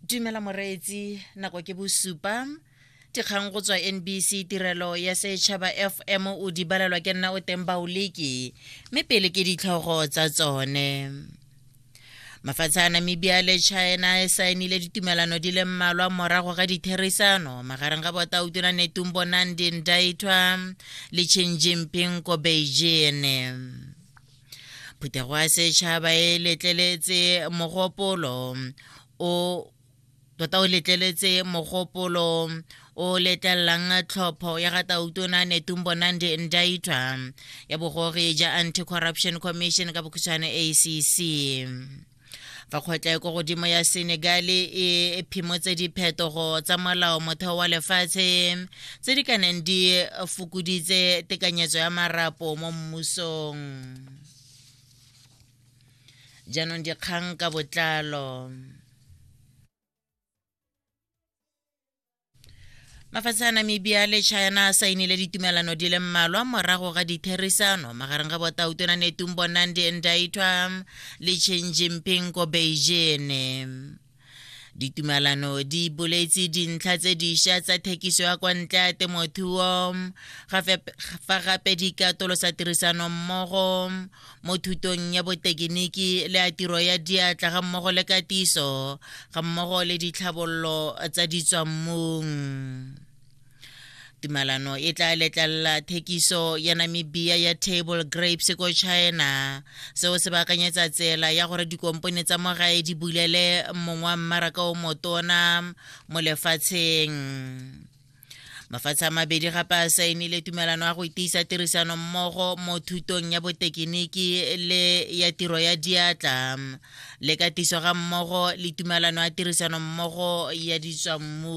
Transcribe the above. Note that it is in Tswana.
dumela moreetsi nako ke bosupa dikgang go tswa nbc tirelo ya setšhaba fm o di balelwa ke nna o teng baoleki mme pele ke ditlhogo tsa tsone mafatshe a namibia le china e saenile ditumelano di le mmalwa morago ga ditherisano magareng ga botautona netumbo nandi ndaithwa le chin jinping ko beijing phuthego ya setšhaba e letleletse mogopolo o tota o letleletse mogopolo o letlelelang tlhopho ya ga tautona netumbo nandi ndaitwa ya bogogi ja anti-corruption commission ka bokhutshwane acc fa kgotla e ko godimo ya senegale e phimotse diphetogo tsa molao motheo wa lefatshe tse di ka neng di fokoditse tekanyetso ya marapo mo mmusong jaanong dikgang ka botlalo mafatshe a namibia le china a sainile ditumelano di le mmalwa morago ga ditherisano magareng ga botautona netumbo nandi ndaitwa le chin jinping ko beijing ditumalano di boletse dintlha tse diša tsa thekiso ya kwa ntle ya temothuo fa gape di katolosa tirisanommogo mo thutong ya botekiniki le a tiro ya diatla ga mmogo le katiso ga mmogo le ditlhabololo tsa ditswammung tumalano e tla letlelela thekiso ya namibia ya table grapes ko china seo se baakanyetsa tsela ya gore dikompone tsa mo gae di bulele mongwa mmaraka o motona mo lefatsheng mafatshe a mabedi gape a saenile tumelano ya go itiisa tirisano mmogo mo thutong ya botekiniki le ya tiro ya diatla le katiso ga mmogo le tumelano ya tirisano mmogo ya ditswammu